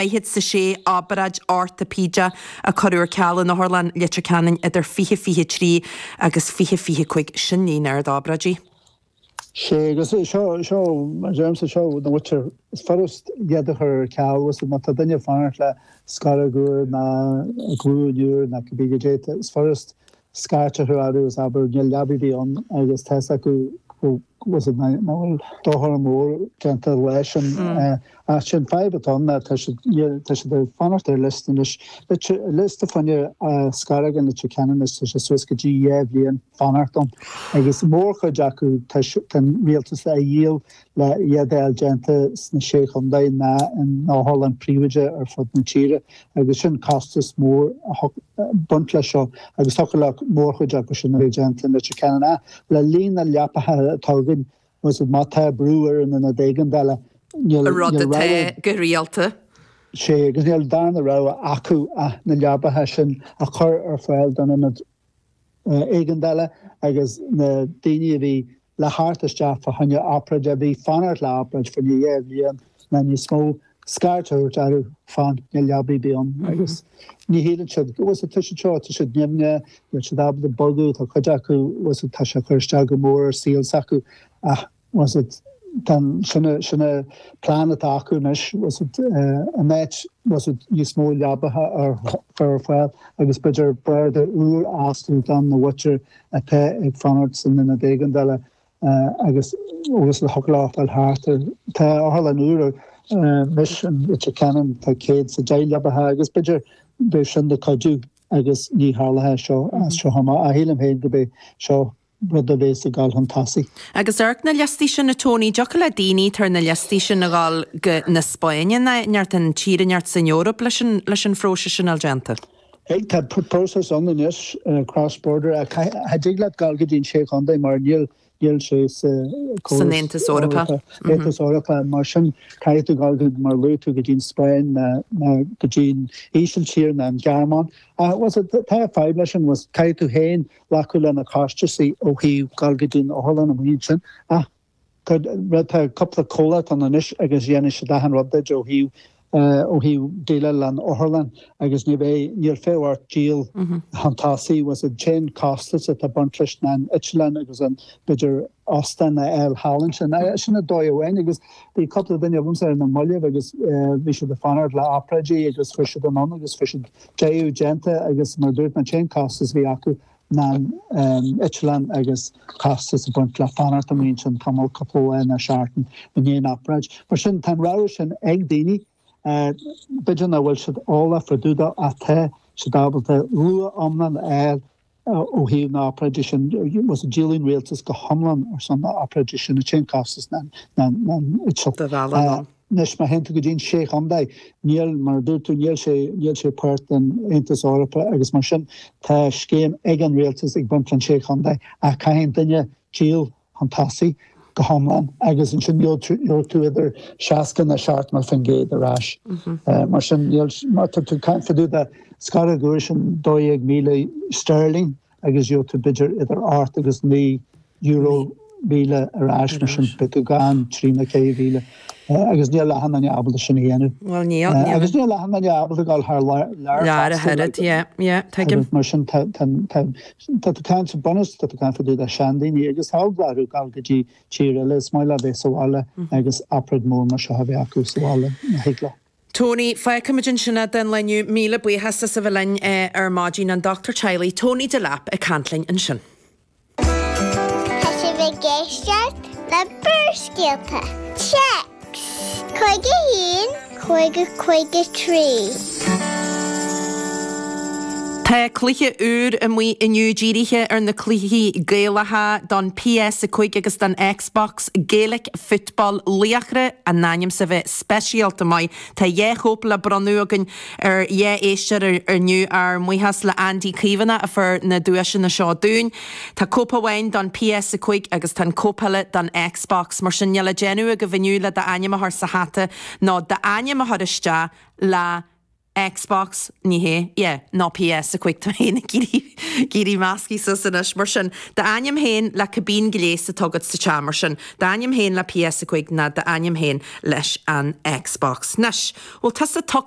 céad is a sé obráid ortaipéideach a cuireadh ar ceal in Otharlann Leitir Ceanainn idir 2023 agus 2025. Sin líon ard obráidí. Sea, agus seo, seo, a Damien, seo na hothair. Is furast iad a chur ar ceal, is má tá duine ag fanacht le scoróg úr ná glúin úr ná cibé caidé atá, is furast scairt a thabhairt orthu is abair níl leabaidh ar bith ann agus tá a fhios acu go bhfuil a fhios agat nach bhfuil dochar mór déanta leis an ach sin fadhb atá ann ná tá siad níl tá siad ag fanacht ar liosta anois lite liosta fá choinne scoróg i Leitir Ceanainn is tá sé suas go dtí dhá bhliain fanacht ann agus mórchuid acu tá tá an rialtas ag díol le hiad a fháil déanta sna Sé Chontae ná in otharlann phríobháideach ar fud na tíre agus sin costas mór atá ag baint leis seo agus thiocfadh le mórchuid acu sin a bheith déanta i Leitir Ceanainn ach le líon na leapaithe atá againn bhfuil a fhios agat má tá brú orainn san ionad éigeandála rud atá go rialta. Sea agus níl an dara rogha acu ach na leapaithe sin a chur ar fáil don ionad éigeandála agus na daoine a bhí le theacht isteach fá choinne obráid, a bhí ag fanacht le obráid fá choinne dhá bhliain nó níos mó, scairt a thabhairt orthu fán na leabaí bhí ann agus ní shíleann siad, bhfuil a fhios agat tá siad seo, tá siad nimhneach, níl siad ábalta bogadh, tá cuid acu, bhfuil a fhios agat tá sé ag cur isteach go mór ar saol s'acu ach. bhfuil a fhios agat tá'n, sin a, sin an plean atá acu anois, ins an áit, bhfuil a fhios agat níos mó leabaithe ar, ar fáil agus b'fhéidir barda úr astu do na hothair atá ag fanacht san Ionad Éigeandála agus agus le fáil thart air, tá otharlann úr anois i Leitir Ceanainn, tá céad is a deich leabaithe agus b'fhéidir beidh sin ina chuidiú agus ní tharlóidh seo as seo amach, ach sílim féin go mbeidh seo rud a bhéas ag dul chun tosaigh. Agus ag amharc ar na liostaí sin, a Tony, thiocfadh le daoine atá ar na liostaí sin a dhul chun na Spáinne ná neart an tír inteacht san Eoraip leis an phróiseas sin a bheith déanta. Aye, tá próiseas ann anois, cross border, ach cha dtig leat dhul go dtí an Sé Chontae mar níl níl sé sa San córas Aontas Eorpach. Eorpach, Aontas Eorpach. Mar sin caithfidh tú dhul go, mar a luaigh tú, go dtí an Spáinn ná ná go dtí an Ísiltír ná an Ghearmáin. Ach, bhfuil a fhios agat, tá fadhb leis sin, is caithfidh tú féin glacadh leis na costaisí ó thaobh dhul go dtí an otharlann amuigh ansin ach tá tá cúpla comhlacht ann anois agus déanann siad achan rud duit ó thaobh ó thaobh déileáil leis an otharlann agus ní bheidh níl fiacha ort díol chun tosaigh bhfuil a fhios agat ach tá an costas atá ag baint leis na heitleáin agus an b'fhéidir Austin na L. Hallinson. Sin dóigh amháin agus bhí cúpla duine ormsa ar na moillibh agus bhí siad ag fanacht le obráidí agus chuir siad anonn agus fuair siad iad déanta agus mar a dúirt mé an t-aon chostas a bhí acu ná an eitleán agus costas a bhain le fanacht an oíche sin tamall cúpla lá ina seartan i ndiaidh na hobráide. Mar sin tá an rogha sin ag daoine b'fheidir nach bhfuil siad eolach fá dtaobh dó ach tá siad ábalta luach iomlán a fháil Ó thaobh na hobráide sin, díolann an rialtas go hiomlán ar son na hobráide sin, an t-aon chostas ná an eitilt. do mhealladh anonn. Anois má théann tú go dtí na sé chontae, níl, mar a dúirt tú, níl sé, níl sé páirt den Aontas Eorpach agus mar sin tá scéim ag an rialtas ag baint leis na sé chontae ach caithfidh an duine díol chun tosaigh go hiomlán agus ansin gheobhaidh tú idir 60 ná 70% ar ais. Mar sin má tá tú caithfidh tú abair go bhfuil sin 12,000 sterling agus gheobhaidh tú b'fhéidir idir ocht agus naoi euro míle ar ais mar sin beidh tú gann trí nó ceithre mhíle agus níl achan duine ábalta sin a dhéanamh. Bhuel níl. Agus níl achan duine ábalta dul thar lear. Lear ach oiread, yeah, yeah, tuigim. Mar sin tá Tá tú ag caint an bunús tá tú ag caint fá dtaobh de seandaoine agus chan ag iarraidh a ghabháil go dtí tír eile, is maith leo bheith sa bhaile agus obráid mhór mar seo a bheith acu sa bhaile, má thig leo. Tony, fágfaimid ansin é don lá inniu, míle buíochas as a bheith linn ar maidin, an dochtúir teaghlaigh, Tony Delap ag caint linn ansin. Tá sibh ag éisteacht le Barrscéalta, téacs 51 50 53. Tá cluiche úr amuigh inniu dírithe ar na cluichí Gaelacha don PS5 agus don Xbox, Gaelic Football Laochra, in ainm is a bheith speisialta maith. Tá dhá chóip le bronnadh againn ar dhá éisteoir inniu, ár mbuíochas le Andy Caomhánach a fuair na duaiseanna seo dúinn. Tá cóip amháin don PS5 agus tá an cóip eile don Xbox, mar sin níl le déanamh agaibh inniu le d'ainm a chur sa hata nó d'ainm a chur isteach le Xbox, ní hea, yeah, nó PS5, tá mé fhéin ag iarraidh iarraidh measctha suas anois, mar sin, d'ainm fhéin le cibé gléas atá agat sa teach, mar sin, d'ainm fhéin le PS5 ná d'ainm fhéin leis an Xbox. Anois, bhfuil tusa tugtha